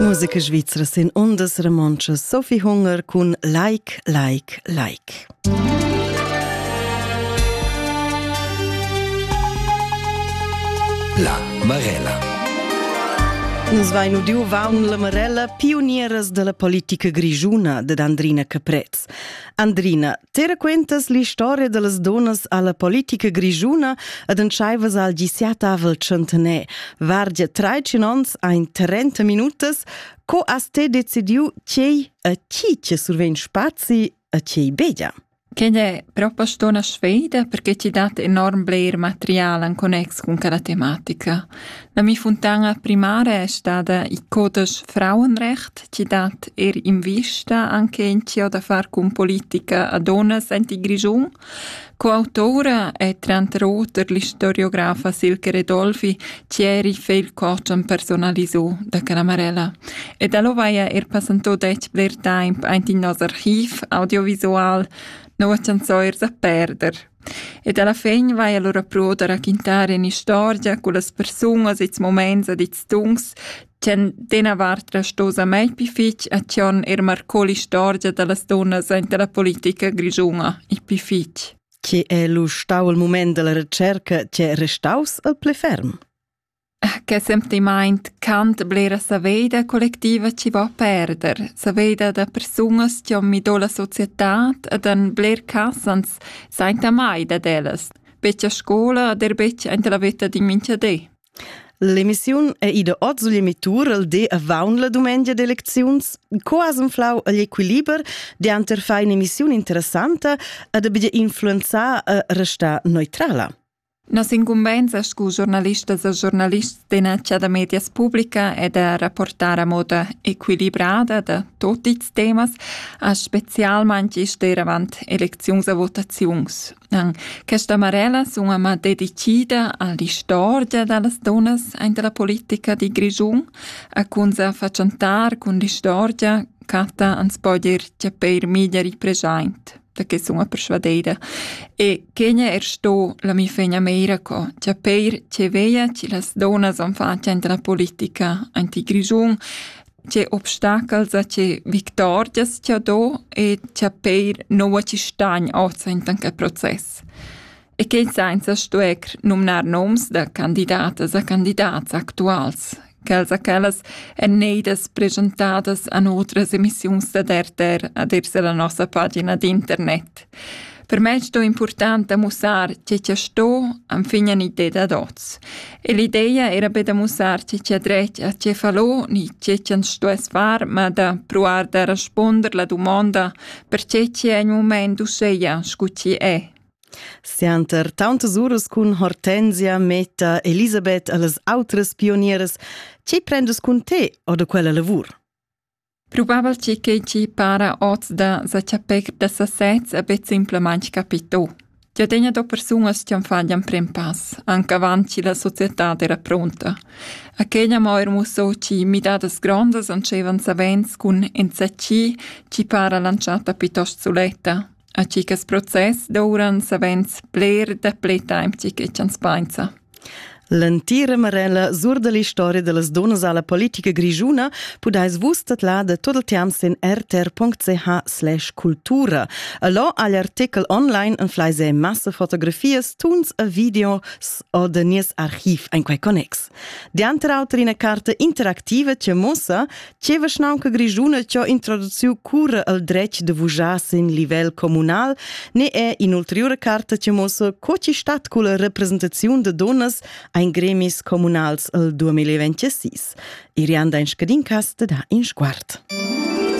Musica svizra sin ondas romontschas Sophie Hunger cun Like, Like, Like. La Marella. Nus vain udiu vaun la Marella, pionieras della politica grigiuna dad Andrina Caprez. Andrina, Te raquentas l'istoria dallas donas alla politica grischuna ed entscheivas al diciatavel centener. Vargia traicin ons ein 30 minutas. Co has te decidiu tgei a chi ti survegn spazi a tgei bedia? Quelle proposto una sfida perché ti dat enorm bler material in connex con quella tematica. La mi funtana primara è stada il codesch Frauenrecht chi dat eir invista anche in chiò da far cun politica a donnas ent il Grischun. Coautoura è tranter oter l'istoriografa Silke Redolfi chi eri feil coach am personalisò da Canamarella. E da lo vaia er passantò dec bler temp aint in nos archiv audiovisual Nova chanzoirs a perder. Ed alla fin vaia lura pruo da raquintar in'istorgia cullas persungas i'ls mumaints ed i'ls tuns ch'han d'ena vart restos amai pü fich e chi hon eir marcò l'istorgia da las dunnas aint la politica grischuna, il pü fich. Che es lu stau il mumaint dalla retscherca chi è restaus il plü ferm? Che sentimaint cant blera saveida collectiva chi va a perder, saveida da persunas chi han mi do la società ed han bler cas ans sainta mai dad ellas, betg a scoula ed er betg aint la vetta d'in minchadé. L'emissiun è ida oz sugl emittur il di avaun la dumengia d'elecziuns. Co as inflau agl equiliber dianter far in'emissiun interessanta ed abia influenzar e restar neutrala? Nossa incumbensa scu giornalistas e giornalists d'enacha da medias publica è da rapportar a moda equilibrada da tot ils temas, a specialmaing steir avant elecziuns e votaziuns. An questa marella sun ama dedicida a l'istorgia da las dunnas aint la politica di Grischun, a cun sa fatschantar cun l'istorgia, Cata ans po dir chia peir miglieri preschaint. da che sun a persvadeira. E quegna er sto la mi fegna meira co, tja peir tge veia, tge las donas han fatg ante la politica anti Grischun, tge obstacels a tge victorias tja do e tja peir noua ci stagn oz ante anche proces. e quei sainza stuer numnar noms da candidatas a candidats actuals, quels a quellas èn neidas presentadas an otras emissiuns da RTR ad ir la nossa pagina d'internet. Per me sto important a mussar che che sto am fignan idee da dots. E l'idea era be da mussar che che dret a che fallo ni che che sto es far, ma da provar da responder la domanda per che che è in moment useia scu ci è. Sianter tauntas uras cun Hortensia metta Elisabeth a las outras pionieras. Tge prendes cun te o da quella lavur? Probabel tgi che ti para oz da sa chapir da sasez a bet simplamain capito. Tia tegna do persunas ti fan gli prem pass, anche avanti la società era pronta. Aquella moir musso ci midadas grondas ancevan savens cun enzacci ci para lanciata piuttosto suletta, A chicas process douran savens bler dapli temp chi chi ch'ans painsa. L'entira marella sur da l'historia da las dunnas a la politica grischuna pudais vus tadlar da tot il temps sin rtr.ch/cultura. Allò ha l'artikel online en fleise massa fotografias, tuns e videos o da nies archiv en quei connex. Dianter auter ina carta interactiva che muossa che vischnaunca grischuna che ho introduciu cura el dretg de vujar sin livel communal ne è in'ulteriore carta che muossa co ci stat culla representaziun de donnas ein gremis communals el 2026. Irianda in scadin cast da in sguard.